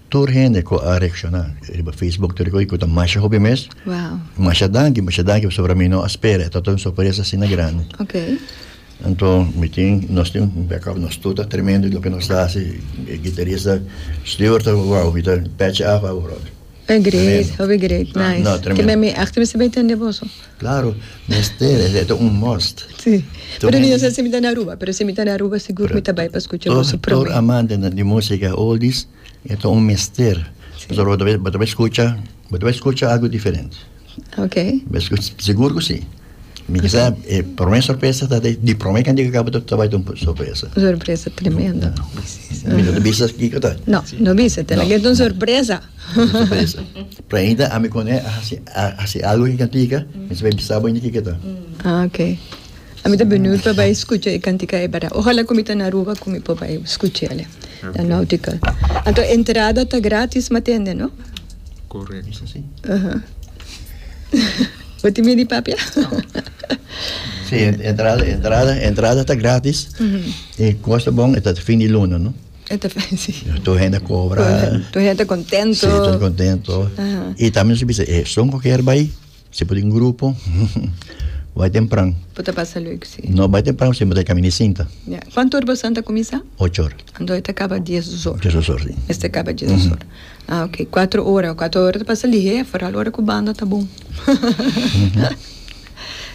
Tur hende ku a reakshoná riba Facebook tur di ko'i ku ta masha hopi mes. Wow. Masha danki, masha danki pasobra mi no a spera. E tabata un sorpresa asina grandi. Okay. Anto mi tin nos tin un backup nos tur ta tremendo loke nos ta hasi e gitarista Stewart ta wow mi ta patch af awor. Hopi great, hopi great. Nice. No, tremendo. Ke mi mi akte mi sta bai tende boso. Claro, mester, esa ta un must. Sí. Pero mi no sa si mi ta na Aruba, pero si mi ta na Aruba sigur mi ta bai pa scucha boso prome. Tur amante di musica oldies e ta un mester. Pasobra bo ta bai, bo ta bai scucha, bo ta bai scucha algo diferente. Okay. Bai scucha, sigur cu si. Mi kisa e prome sorpresa ta di, di prome cantica di cabo ta bai ta un sorpresa. Un sorpresa tremendo. Mi no ta bisa kiko ta. No, no bisa, tene que ta un sorpresa. Sorpresa. Pregunta, Ami con e a haci a haci algo cu e cantica? Mester bai bisa bo inti kico ta. Ah, ok. Ami ta beniut pa bai scucha e cantica e bardad. Ojalá cu mi ta na Aruba cu mi por bai scucha el, na Nautical. Anto entrada ta gratis me tende, no? Correcto. Bisa si. Uh-huh. Bo tin bini papia? Si, entrada, entrada, entrada ta gratis. E costa bon e ta fin di luna, no? E ta fácil. Tur hende a kobra. Tur hende ta kontentu. Sí, tur hende kontentu. I tambe nos a bisa, e esun ku a kier bai, si e por tin grupo, bai tempran. Por ta pasa lek, sí. No bai tempran pasobra e mester kaminda i sinta. Ya. Kuantu ora bosnan ta kuminsá? Ocho ora. Anto e ta kaba dies, dos ora. Dies, dos ora, sí. Mester kaba dies, dos ora. A ok. Kuatro ora. Kuatro ora ta pasa lihé, foral ora ku banda ta bon.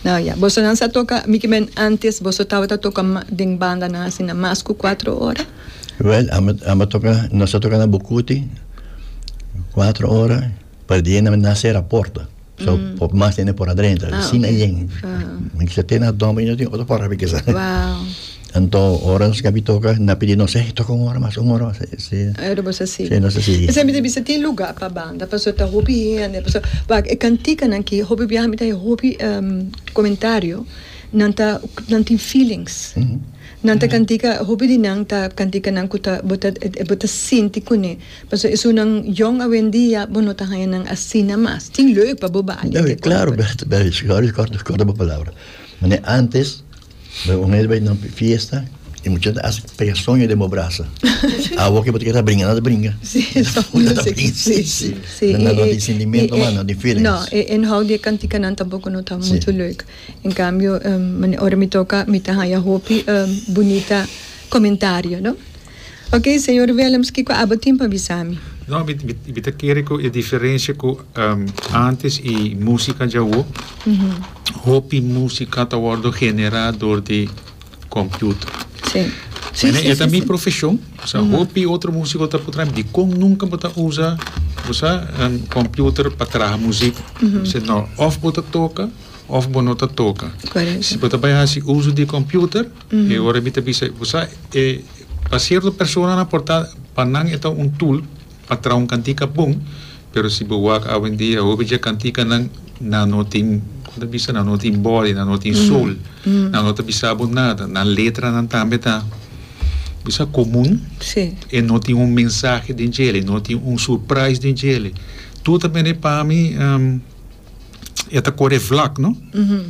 Nau ya, bosonan sa toka mikimen antes boso tabata toka den bandanan asina mas ku kuater ora? Wèl, amba amba toka nos a toka na Bucuti kuater ora pa di na na sera porta, so por mas hende por a drenta, asina yen. Mikisa te na dòmber i no tin otro porta pa kisa. Wao. Anto ora nos kabi toka na pidi nos ey toka un ora mas un ora mas si Ey nos a sigui si nos a sigui. Esei mi ta bisa tin luga pa banda paso ta hopi hende paso wak e kantikanan ki hopi biaha mi ta haya hopi komentario nan ta nan tin feelings nan ta kantika hopi di nan ta kantikanan ku ta bo ta bo ta sinti kuné paso esunnan yòn awendia bo no ta haya nan asina mas tin leu pa bo bali. Claro kòrda bo palabra mane antes. Bo mester bai na un fiesta y mucha hende a haci pega soño den bo brasa. Awo ke bo ta keda bringa, no ta bringa. No ta bringa, si, si. No tin sentimiento mas, no tin feelings. No, e inhoud di e cantikanan tampoco no ta mucho leuk. En cambio, ora mi toca, mi ta haya hopi bunita comentario, no. Ok, Señor Willems, kiko abo tin pa bisa mi? No, mi, mi, mi ta kere ku e diferensia ku um, antes i musika djawo, hopi musika ta wordo generá dor di computer. Sí. Sí, Mene, sí, e ta sí, mi sí. profesion, o sea, hopi otro musiko ta putra dikon nunka bo ta usa, bo sa, um, computer pa traha musika. Mi se no, of bo ta toka, of bo no ta toka. Correcto. Si bo ta bai hasi uso di computer, E ora mi ta bisa ku sa e pa sierto personanan por ta pa nan e ta un tool pa traha un kantika bon pero si bo wak awendia hopi dje kantikanan nan no tin kon ta bisa nan no tin body nan no tin soul nan no ta bisa bo nada nan letranan tambe ta bo sa komun e no tin un mensahe den djele e no tin un surprais den djele tur ta bini pa mi. e ta kore vlak no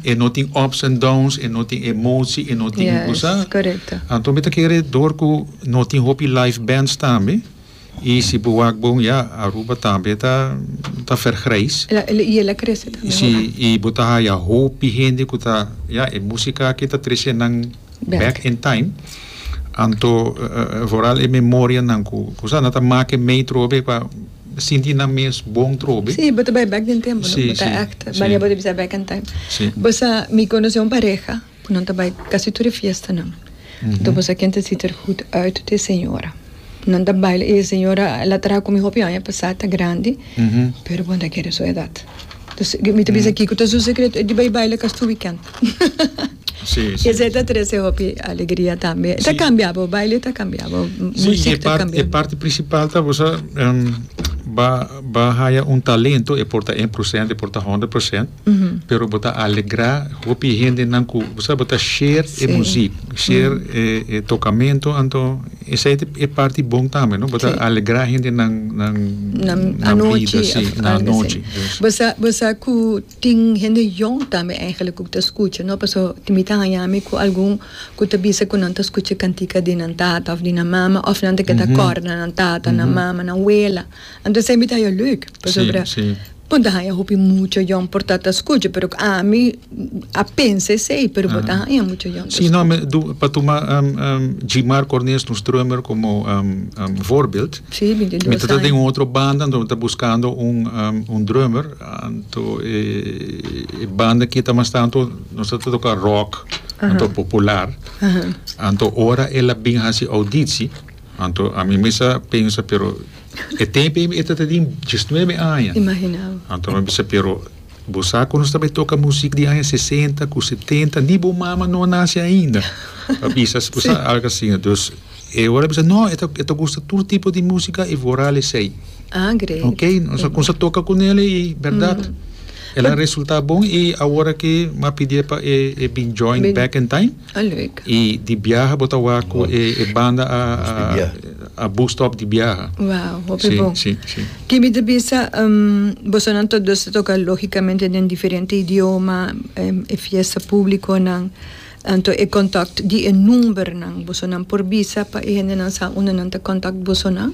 e no tin ups and downs e no tin emotie e no tin ningún sa anto mi ta kere dor ku no tin hopi live bands tambe i si bo wak bon ya Aruba tambe ta ta vergrijs i el a krese tambe si i bo ta haya hopi hende ku ta ya e músika aki ta trese nan back in time anto vooral e memorianan ku nan ta make mee trobe pa sinti nan mes bon trobe. Sí, bo ta bai bek den tempu, no? Bo ta èkt bania bo ta bisa back in time. Bo sa, mi konosé un pareha ku nan ta bai kasi tur e fiestanan. Anto bo sa ken ta sita er hut uit te señora. Nan ta baila i e señora el a traha ku mi hopi aña pasá, ta grandi, pero bo no ta kere su edat. Mi ta bisa kiko ta su secreto, e di bay baila castu weekend. Y esey ta trece hopi alegria tambe. E ta cambia bo, baile ta cambia bo, muziek ta cambia bo. E parti principal ta bo sa bo haya un talento e por ta een por sent, e por ta honderd por sent, pero bo ta alegra hopi hendenan cu bo sa bo ta share e muziek, share e tocamento anto. Esei ta e parti bon tambe no bo ta alegrá hendenan nan bida si nan anochi. Bo sa ku tin hende yòn tambe eigenlijk ku ta skucha no paso mi ta haña mi ku algun ku ta bisa ku nan ta skucha kantika di nan tata òf di nan mama òf nan ta keda kòrda nan tata nan mama nan wela. Anto esei mi ta haña lüik, pasobra bo ta haña hopi mucha yon por ta ta skucha, pero ami a pensa esei, pero bo ta haña mucha yon ta skucha. Pa tuma Djimar Cornelis nos drummer komo voorbeeld, mi ta ta den un otro banda, anto mi ta buskando un drummer, anto e banda aki ta mas ta, anto nos ta ta toka rock, anto popular, anto ora el a bin hasi auditsi, anto ami mester a pensa, pero. E tempe mi e ta ta tin diesnuebe aña. Imagina bo. Anto no bisa pero bo sa cu nos ta bay toca music den aña sesenta cu setenta ni bo mama no a naci ainda pa bisa bo sa algo asina dus e ora bisa no e ta gusta tur tipo di musica y vooral esey ok nos a cuminsa toca cu nel y berdad el a resulta bon y awor aki mi a pidi e pa e bin join back in time. A leuk. Y di biaha bo ta wak cu e e banda a a a bus top di biaha. Wow, hopi Sí, bon. sí, sí. Ki mi ta bisa, em, bosonan tot dos ta toca lógicamente den diferente idioma, em, e fiesta públiconan, anto e contact di e numbernan bosonan por bisa pa e hendenan sa unda nan ta contact bosonan?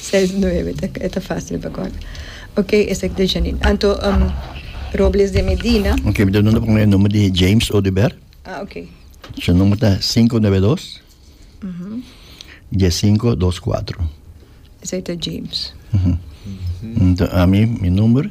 Seis nueve ta e ta facil pa corda. Ok esaki ta Janine. Anto um, Robles de Medina. Ok, mi ta duna con e number di James Odiber. Ah, ok. Su number ta 592 1524. Esaki ta James. Entonces, a mi, mi number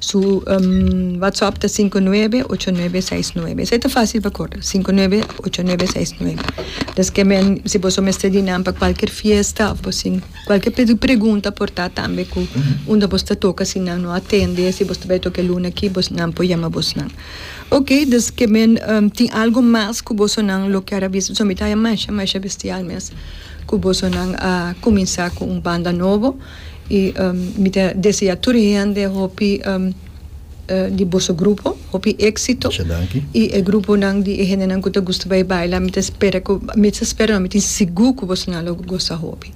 Su WhatsApp ta sinku nuebe ocho nuebe seis nuebe esei ta fácil pa korda sinku nuebe ocho nuebe seis nuebe deskemen si boso mester di nan pa kualker fiesta òf bosin kualker pe pregunta por ta tambe ku unda bos ta toka si nan no atende si bos ta bai toka e luna aki bos nan por yama bos nan ok des ke men tin algu mas ku boso nan lo ker a bisa pasobra mi ta haña masha masha bestial mes ku boso nan a kuminsá ku un banda nobo. Y mi ta desea tur hende hopi di boso grupo hopi exito. Mucha danki. Y e gruponan di e hendenan cu ta gusta bay baila mi ta spera cu mi ta spera no mi tin sigur cu bosonan lo gosa hopi.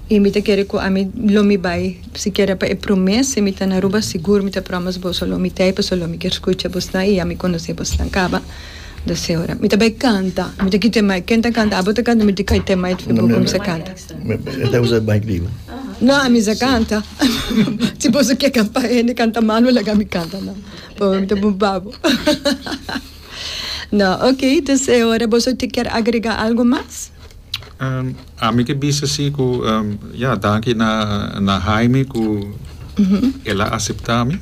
Y mi ta kere cu ami lo mi bay sikiera pa e prome si mi ta na Aruba sigur mi ta promes boso lo mi tey pasobra lo mi kier scucha bosnan y ya mi conoce bosnan caba. Daseora. Mi ta bay canta mi ta ki temai ken ta canta abo ta canta mi ta ki temai cu mi ta canta. No a misa canta si bo su ke canta hende canta mal no laga mi canta no pabia ta bun pa bo no ok dus e ora boso ti kier agrega algo mas. Ami ke bisa si ku ya danki na Haimi ku el a acepta mi.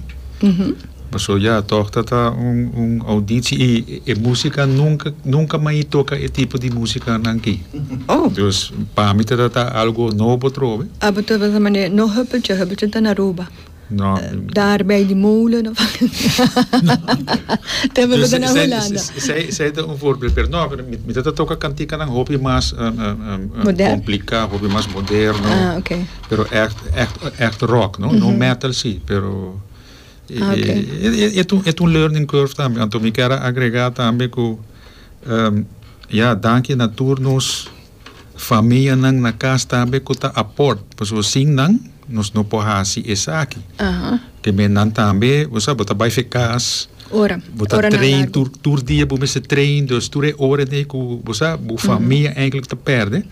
Paso ya tog ta ta un un audici y e musica nunca nunca mai toca e tipo di musica nan aki. Oh. Dus pa mi ta ta ta algo nobo trobe. Abo ta basa mane no huppeltje, huppeltje ta na Aruba. No. Daar bij die molen of te hebben we dan naar Hollanda. Zij zij ta un voorbeeld pero no mi ta ta toca cantica nan hopi mas Modern. complica hopi mas moderno. Ah oké. Pero echt echt echt rock no no metal si pero. E ta un learning curve tambe, anto mi kier a agrega tambe ku ya danki na tur nos famianan na kas tambe ku ta aport pasobra sin nan nos no por hasi esaki ke men nan tambe bo sabi bo ta bai fe kas bo ta train tur dia bo mester train dus tur e ora nei ku bo sa bo famia enkele ta perde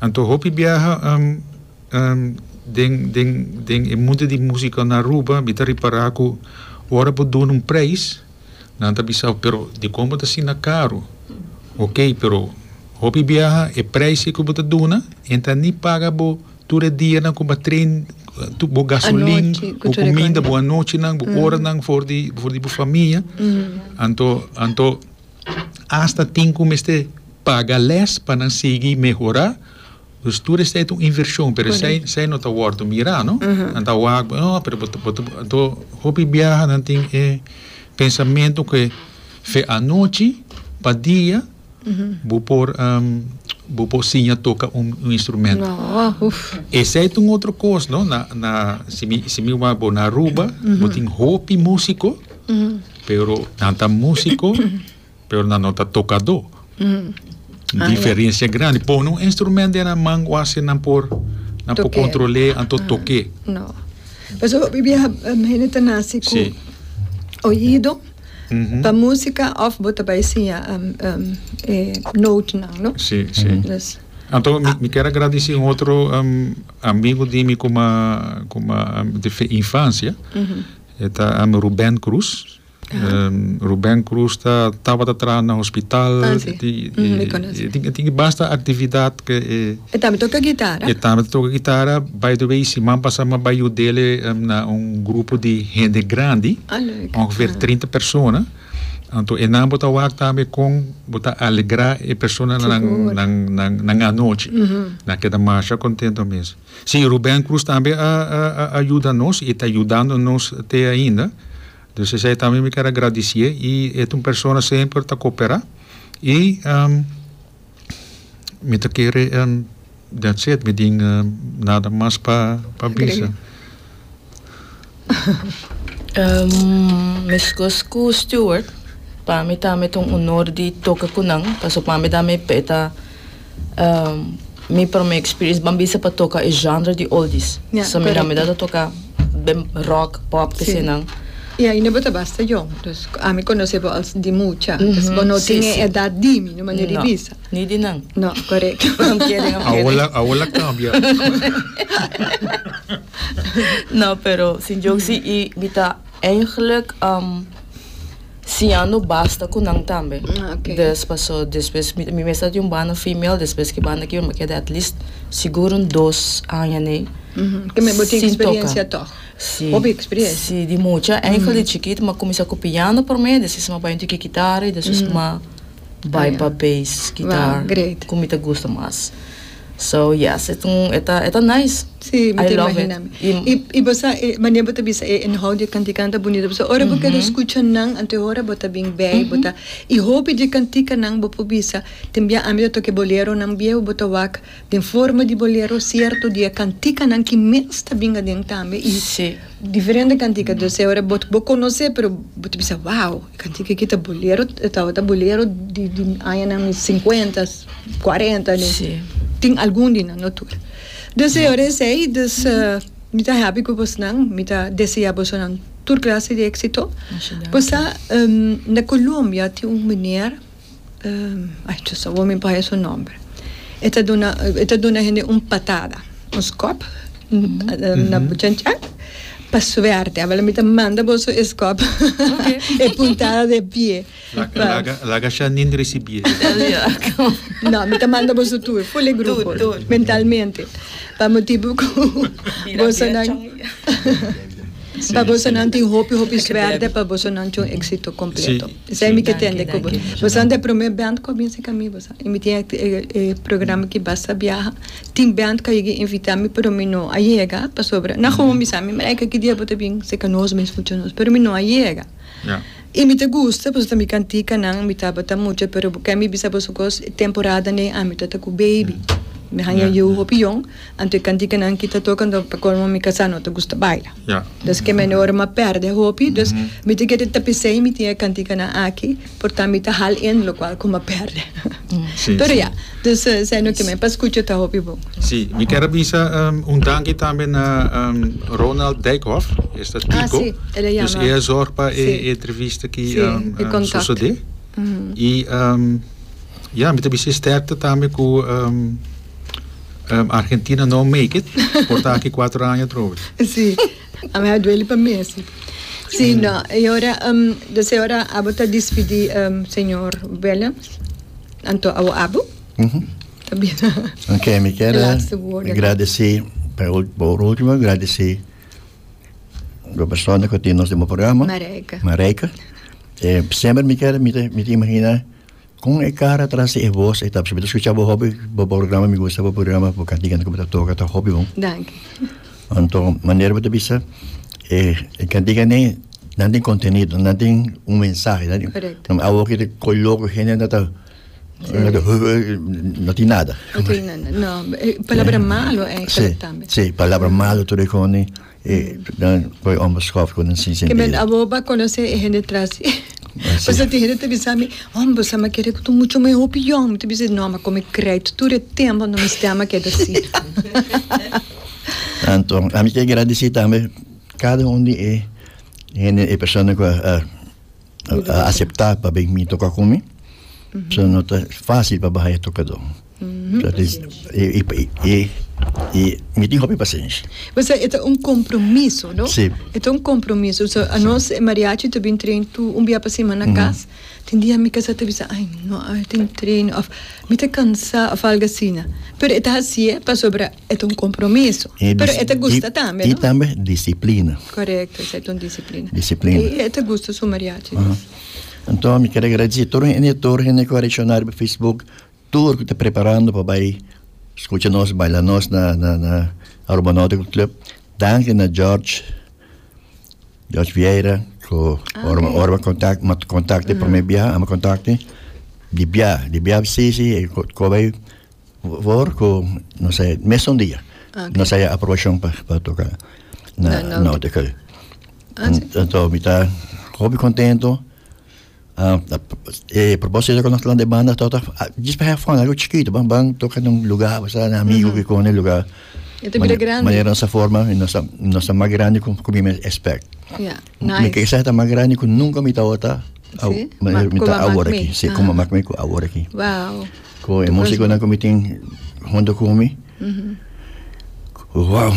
anto hopi biaha. Den den den e mundu di musika na Aruba mi ta ripara ku ora bo duna un preis nan ta bisa bo pero dikon bo ta asina karu ok pero hopi biaha e preis ei ku bo ta duna e ta ni paga bo tur e dianan ku bo a train tur bo gasolin bo kuminda bo anochinan bo oranan for di for di bo famia anto anto asta tin ku mester paga lès pa nan sigui mehora Pues tur esei ta un invershon, pero esei, esei no ta wòrdu mirá, no? Nan ta wak, bo, oh, pero bo ta, bo ta, anto hopi biaha nan tin e pensamentu ku e fe anochi, pa dia bo por, bo por siña toka un instrumentu. Esei ta un otro kos, no? Na, na, si mi, si mi wak bo na Aruba, bo tin hopi músiko, pero nan ta músiko. Pero nan no ta tocador. Ah, Diferencia yeah. grande. Pon un instrumento en nan man, wasi nan por, nan por controle, anto ah. toque. No. Pues o bibia hene te nace cu sí. oído. Mm -hmm. Pa música of bota pa enseñar um, um, eh, note nan, no? Sí, sí. Mm -hmm. dus, Anto, ah. mi quero agradecer um outro um, amigo de mim como, como um, de infancia. Mm -hmm. Eta um, Ruben Cruz. Ruben Cruz ta tabata traha na hospital. Ah, sí. E tin, Ujú, mi conoce. e tin, e tin e basta actividad que e, E tambe toca guitarra. e tambe ta toca guitarra. By the way, siman pasa mi a bay yudele em, na un grupo di hende grandi, Ah, leuk. ongeveer Ah. trinta persona. Anto enan bo ta wak tambe con bo ta alegra e personanan Sigur. nan, nan, nan anochi. Ujú. Nan keda masha contento mes. Sí, Ruben Cruz tambe a, a, a, a yuda nos y ta yudando nos te ainda. Dus esei ta mi mi kier a gradicié y e ta un persona semper ta coopera y mi ta kere that's it mi tin nada mas pa pa bisa. Mescos cu Stewart pa mi tambe ta un honor di toca cu nan pasobra pa mi dame p'e ta. Mi prome experience ban bisa pa toca e genre di oldies. Yeah, so mi na midad a toca ben rock, pop, sí. que nan. Y ahí no bota basta jong. Dus a mi conoce bo als di mucha. Mm -hmm. Dus bo no sí, tiene sí. edad di mi, no manera no. di bisa. Ni di nan. No, correcto. I'm kidding, I'm kidding. Awola, awola cambia. no, pero sin joke, mm -hmm. sí, y bita eigenlijk um, Siña no basta ku nan tambe. Des paso despues mi mi mester di un banda female despues ki banda kiba mi ta keda atleast sigur un dos aña nei sin toka. Si, si di mucha enkel di chikit mi a kuminsá ku piano promé despues mi a bai un tiki kitara i despues mi a bai pa base kitar ku mi ta gusta mas. So yes e ta e ta nice. Sí, mi ta imagina mi. I, i bo sa e manera bo ta bisa e inhoud di e kantikan ta bunito pasobra ora bo keda skucha nan anto e hora bo ta bin bai bo ta i hopi di e kantikanan bo por bisa tin bia ami ta toka e boleronan biehu bo ta wak den forma di bolero cierto di e kantikanan ki mes ta bin aden tambe i Diferente cantica doce ora bo conoce pero bo ta bisa wow e cantica aki ta bolero tabata bolero di añanan cincuenta cuarenta tin algun di nan no tur doce ora esey dus mi ta happy cu bos nan mi ta desea bosonan tur clase di exito bosa na Colombia tin un meneer ay Dios awor mi pahe su nomber e ta duna e ta duna hende un patada un skop na buchan chan pa suerte a bala mi ta manda boso e skop e puntada de pie laga sha nin risibi e no mi ta manda boso tur ful e grupo mentalmente pa motibu cu boso nan pa boso nan tin hopi hopi suerte pa boso nan cu exito completo. Esei mi ke tende ku bo. Boso anto e promé bènt ku a binse ka mi boso. I mi tin e programa ki Basta Biaha. Tin bènt ku a yega invitá mi pero mi no a yega pasobra nan homi sa mi mereka ki dia bo ta bin seka nos mes fucha nos pero mi no a yega. I mi ta gusta pasobra mi kantika nan mi tabata mucha pero bo kèn mi bisa boso kos e temporada n'ei ami ta ta ku baby. Mi haña yu hopi yon. Anto e cantikanan ki ta toka anto pa colmo mi casa no ta gusta baila. Dos keme ende ora m'a perde hopi dos mi ta kere tapis'e y mi tin e cantikanan aki porta mi ta hal en locual cu m'a perde. Pero ya dos esai no keme pa scucha ta hopi bon. Si, mi kier a bisa un danki tambe na Ronald Dijkhof, es ta Tico, dus e a zorg pa e entrevista ki sosode. Y ya mi ta bisa e sterkte tambe cu Ehm, Argentina no make it, por ta aki cuatro aña atroves. Sí, a mí a duele pa mí así. Sí, no, y ahora, um, desde ahora, abo ta despedí, um, señor Willems, anto abo abo. Tá bem. Ok, mi quer Laatste woorden. agradecer, para ul- por último, agradecer do persona que tem nos demo programa. Marijke. Marijke. Eh, sempre mi quer, mi te, mi te imagina Con e cara tras di e voz e ta pasobra mi ta scucha bo hopi bo programa mi gusta bo programa bo cantica como ta toca ta hopi bon. Danki. Anto manera bo ta bisa e e cantica ne nan tin contenido nan tin un mensahe nan tin Correcto. nan awo ki ta coge loco hende nan ta no tin nada. No tin nada no e palabra malo enker tambe. Sí sí palabra malo tur e cone. E nan koe omber skof ku nan sin sentido. Kimen abo ba konosé e hende trasi. Pasobra tin hende ta bisa mi, Homber sa mi a kere ku ta muchu me hopi yon. Mi ta bisa, No, mi a kome krèdito tur e tempu, no mi stèma a keda si. Anto, ami ke gradisí tambe kada un di e hende, e persona ku a. a acepta pa ben mi toca cu mi so no ta facil pa baha e tocador dat is e e e e mi tin hopi pacencia O sea, esta un compromiso, ¿no? Sí. Esta un compromiso. O sea, a nos eh, mariachi te bin train tu un bia pa semana na cas. Tin dia mi casa te bisa, ay, no, ay, tin train of mi te cansa of algo asina. Pero e ta hasié pasobra E ta un compromiso. E Pero e ta disip- gusta tambe, y no? tambe disciplina. Correcto, esa es un disciplina. Disciplina. Y e ta gusta su mariachi. Aha. dus. Anto mi quiero agradecer todo hende, todo hende que a reaccionar pa Facebook, tur que ta preparando pa bay scucha nos, baila nos na, na, na Aruba Nautical Club. Danki na George, George Vieira, cu Ah, ora, oké. ora contact, ma contacte primer bia, ama contacte. Di bia, di bia sí, sí, e co- cobay Voor ku nos a mesun dia nos a aprobashon pa pa toka na Nautical anto mi ta hopi kontento e propósito ku nos plan di banda ta just pa hèf fòn algu chikitu ban ban toka na un lugar pasá na amigu ku kòne lugar manera nos a forma nos a mas grandi ku mi mes espèkt. Nice. Mi kesa ta mas grandi ku nunka mi tabata au, Sí? mi Ma- mi kuma ta awor mak mi. aki, si kuma Aha. mak mi ku awor aki. Wow. Ku e musikonan ku mi tin hunto ku mi, wow,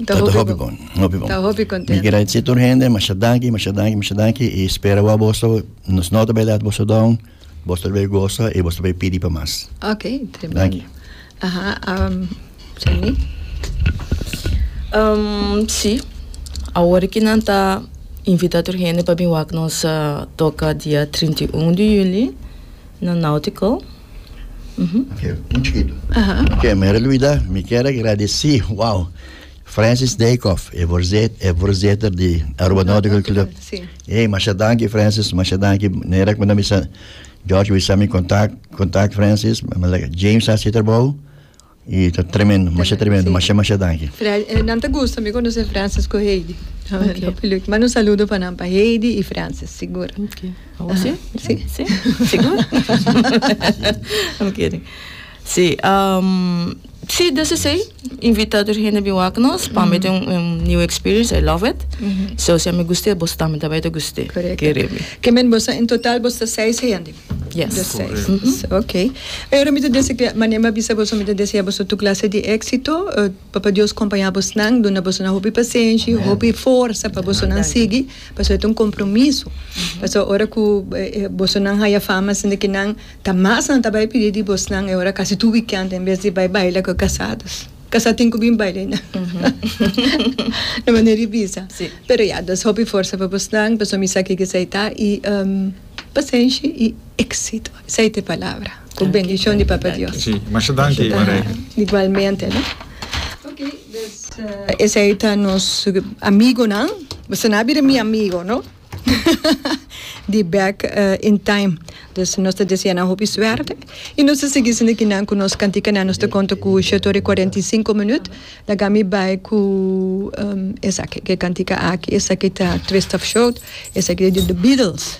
Ta ta hopi hopi bon. bon, hopi bon. Ta hopi kontento. Mi kira di tur hende masha danki, masha danki, masha danki i spera wou boso nos nota bailat boso don Bos ta bay gosa y bos ta bay pidi pa mas. Ok, tremendo. Danki. Aha, um, Jenny? Um, sí, awor ki nan ta invita tur hende pa bin wak nos uh, toka dia 31 di juli na Nautical. Mhm. Ok, un chiquito. Aha. Ok, mi era luida, mi kier agradeci, wow. Francis Dijkhof e voorzet, e voorzitter di Aruba Nautical Club. Sí. Hey, masha danki Francis, masha danki. Nera kunda mi sa George wisa mi contact, contact Francis, ma like James sa sitter bou. E ta tremendo, masha tremendo, masha masha danki. Fran, eh, nan te gusta mi conoce Francis con Heidi. Okay. Lo pilu- Manda un saludo pa nan, pa Heidi y Francis, seguro. Oké. Oké. Aha, sí. Sí, seguro. Oké. Sí, sí des esei invita tur hende bin wak nos pa mi tin un new experience, I love it. So si ami guste boso tambe ta bai ta guste. Kere mi. Ke men boso en total boso ta seis hende? Yes. Boso seis. Correcto. Ok. E ora mi ta dese ke mane mi a bisa boso mi ta desea boso tur clase di éxito. Papa Dios compaña abosnan, duna bosonan hopi pasenshi, hopi forsa pa bosonan sigui, pasobra e ta un compromiso. Pasobra ora ku bosonan haya fama asina kinan. Ta mas nan ta bai pidi di bosnan e ora casi tur weekend en bes di bai baila cu e casados. Casá tin cu bin baila y nan. E manera di bisa. Sí. Pero ya, dus hopi forsa pa bosnan, pasobra mi sa kiko esei ta y pasenshi y exito. Esei ta e palabra. Cu bendicion di Papa Dios. Sí, masha danki Marijke. Igualmente no. Ok, dus esei ta nos amigonan. Bo sa na bira mi amigo no. di Back in Time. Dus nos ta desea nan hopi suerte y nos ta sigui sinda kinan cu nos cantikanan. Nos ta conta cu shete ora y cuarenta y cinco minuut. Laga mi bay cu um esaki, cu e cantica aki. Esaki ta Twist of Shout, esaki ta di The Beatles.